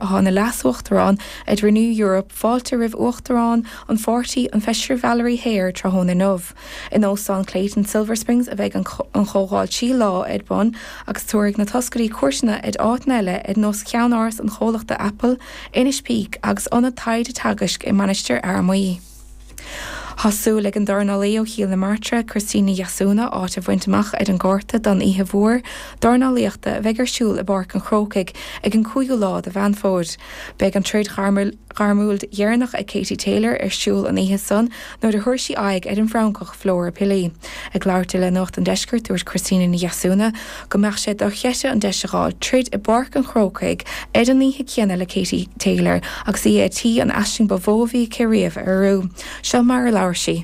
athá ina Leas-Uachtarán ar Renew Europe fáilte roimh Uachtarán an pháirtí, an Feisire Valérie Hayer, tráthnóna inniu. In Óstán Clayton Silver Springs a bheidh an chomhdháil trí lá ar bun agus tabharfaidh na toscairí cuairteanna ar áiteanna eile ar nós Cheannáras an Chomhlachta Apple, Inis Píc agus Ionad Taighde Teagaisc i Mainistir Fhear Maí. Tá súil ag an dornálaí ó Chill na Martra, Christina Ní Dheasúna, áit a bhaint amach ar an gcárta don oíche mhór dornálaíochta a bheidh ar siúl i bPáirc an Chrócaigh ar an 5ú lá de Mheán Fómhair. Beidh an troid ghairmiúil dheireanach ag Katie Taylor ar siúl an oíche san nuair a thabharfaidh sí aghaidh ar an bhFrancach, Flora Pili. Ag labhairt di le Nuacht an Deiscirt, dúirt Christina Ní Dheasúna go mbeadh sé dochreidte an deis a dh'fháil troid i bPáirc an Chrócaigh ar an oíche céanna le Katie Taylor agus í ar tí an aisling ba mhó a bhí aici riamh a fhíorú. Seo mar a labhair sí.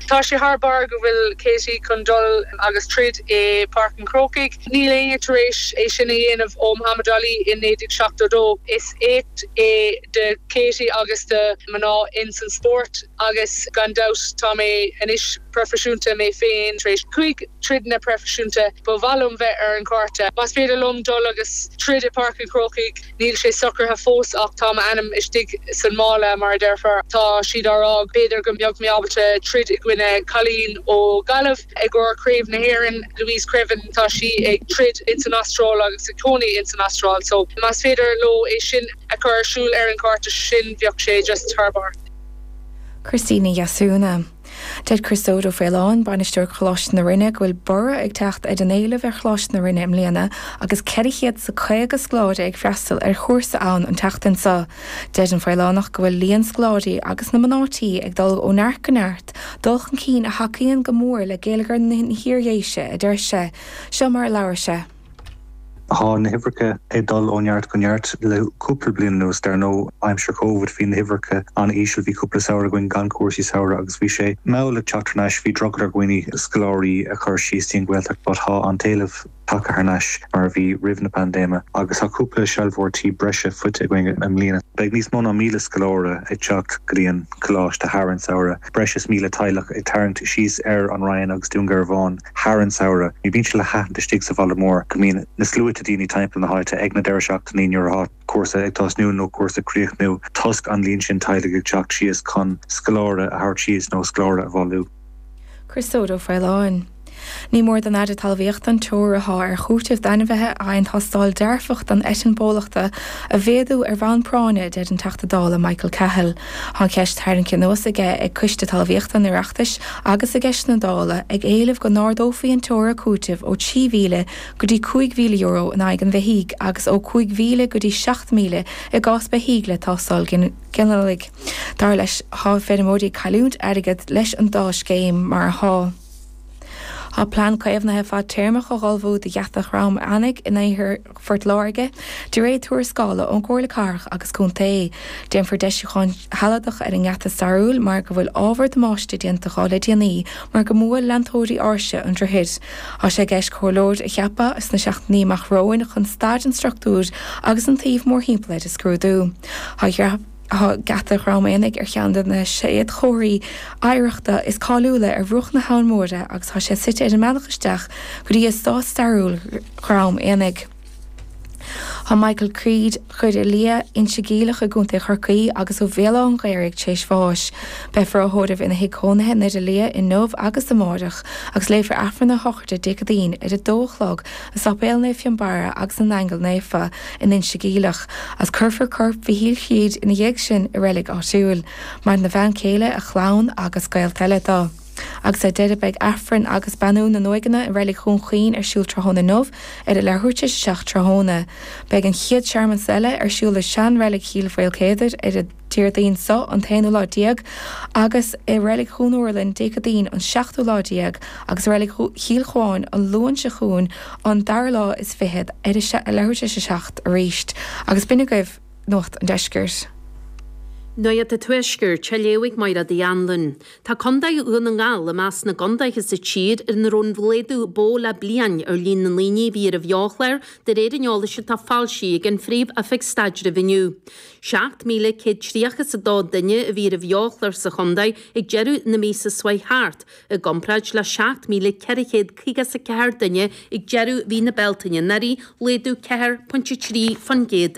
Tá sé thar barr go bhfuil Katie chun dul agus troid i bPáirc an Chrócaigh. Níl éinne tar éis é sin a dhéanamh ó Muhammad Ali i 1972. Is éacht é do Katie agus do mhná ins an spórt. Agus gan dabht tá mé anois proifisiúnta mé féin tar éis cúig troideanna proifisiúnta. Ba mhaith liom bheith ar an gcárta. Más féidir liom dul agus troid i Páirc an Chrócaigh, níl sé socraithe fós ach tá m'ainm istigh san mála mar a deirfeá. Tá siad á rá go b'fhéidir go mbeadh mé ábalta troid i gcoinne cailín ó Ghaillimh, i gcomhair Craobh na hÉireann, Louise Creaven. Tá sí ag troid ins an Astráil agus ag cónaí ins an Astráil. So más féidir leo é sin a chur ar siúl ar an gcárta, sin, bheadh sé just thar barr. Christina Ní Dheasúna. Deir Criostóir Ó Faoláin, Bainisteoir Choláiste na Rinne, go bhfuil borradh ag teacht ar an éileamh ar Choláiste na Rinne i mbliana agus ceithre chéad is a caoga scoláire ag freastal ar chúrsa ann an tseachtain seo. Deir an Faolánach go bhfuil líon scoláirí agus na mná tí ag dul ó neart go neart, dul chun cinn a thacaíonn go mór le géilleagar na hIardhéise, a deir sé. Seo mar a labhair sé. Tá na huimhreacha ag dul ó neart go neart le cúpla bliain anuas. Dar ndóigh, aimsir Covid bhí na huimhreacha an-íseal. Bhí cúpla samhradh againn gan cúrsaí samhraidh agus bhí sé mall ag teacht thar n-ais. Bhí drogall ar dhaoine scoláirí a chur síos dtí an Ghaeltacht but tá an t-éileamh tagtha thar n-ais mar a bhí roimh na paindéime agus tá cúpla sealbhóir tí breise faighte againn i mbliana. Beidh níos mó ná míle scoláire ag teacht go dtí an Coláiste thar an samhradh, breis is míle teaghlach ag tarraingt síos ar An Rinn agus Dún Garbhán. thar an samhradh. Bíonn sé le haithint istigh sa bhaile mór go mbíonn na sluaite daoine timpeall na háite ag na deireadh seachtainí nuair atá cúrsa ag tosnú nó cúrsa ag críochnú toisc an líon sin teaghlaigh ag teacht síos chun scoláire a thabhairt síos nó scoláire a bhailiú. Criostóir Ó Faoláin. Ní mór don Aire Talmhaíochta an teora athá ar chúiteamh d'ainmhithe a fhaigheann tástáil dearfach don eitinn bólachta a mhéadú ar bhonn práinne a deir an Teachta Dála Michael Cahill. Tá an cheist tarraingthe anuas aige ag Coiste Talmhaíochta an Oireachtais agus i gceisteanna Dála, ag éileamh go n-ardófaí an teora cúitimh ó €3,000 go dtí €5,000 in aghaidh an bheithígh agus ó €5,000 go dtí €7,000 i gcás beithígh le teastais ghinealaigh. Dar leis, tá feirmeoirí ag cailliúint airgead leis an dá scéim mar atá. Tá plean caomhnaithe fadtéarmach á ullmhú do Gheata Dhrom Eanaigh in iarthar Phort Láirge, de réir tuarascála ón gComhairle Cathrach agus Contae. Déanfar deisiúcháin shealadacha ar an ngeata stairiúil mar go bhfuil ábhar damáiste déanta dho le déanaí mar go mbuaileann leantóirí áirse an droichid. Tá sé i gceist comhairleoir a cheapadh sna seachtainí amach romhainn chun staid an struchtúir agus an tsuímh mórthimpeall air a scrúdú. Tá Geata Dhrom Eanaigh ar cheann de na séadchomharthaí oidhreachta is cáiliúla ar bhruach na hAbhann Móire agus tá sé suite ar an mbealach isteach go dtí eastát stairiúil Dhrom Eanaigh. Tá Michael Creed, Currach Liath, Inse Geimhleach i gContae Chorcaí agus ó Bhéal Átha'n Ghaorthaidh tréis bháis. Beifear á thórramh ina thigh cónaithe in Doire Liath inniu agus amárach agus léifear Aifreann a shochraide Dé Ceadaoin ar a dó a chlog i Sáipéal Naomh Fionnbarra agus na nAingeal Naofa in Inse Geimhleach, is cuirfear corp Mhichíl Creed ina dhiaidh sin sa reilig áitiúil, maireann a bhean chéile, a chlann agus gaolta eile do. Agus ar deireadh beidh Aifreann agus Beannú na nUaigheanna i Reilig Dhún Chaoin ar siúl tráthnóna inniu ar a leathuair tar éis a seacht tráthnóna. Beidh an chéad searmanas eile ar siúl i sean-reilig Chill Mhaoilchéadair ar a Déardaoin so an t-aonú lá déag agus i Reilig Dhún Úrlainn Dé Ceadaoin an seachtú lá déag agus i Reilig Chill Chuáin an Luan seo chugainn an dara lá is fichead ar a leathuair tar éis a 7 arís agus b'in agaibh Nuacht an Deiscirt. Nuacht an Tuaiscirt, á léamh ag Michelle de hAnluain. Tá Condae Dhún na nGall i measc na gcondaetha sa tír ina raibh an laghdú ba mhó le bliain ar líon na ndaoine a bhí ar an bheo-chlár de réir an eolais atá foilsithe ag an Phríomh-Oifig Staidrimh inniu. 7,132 duine a bhí ar an bheo-chlár sa chontae ag deireadh na míosa seo thart, i gcomparáid le 7,454 duine ag deireadh mhí na Bealtaine anuraidh, laghdú 4.3%.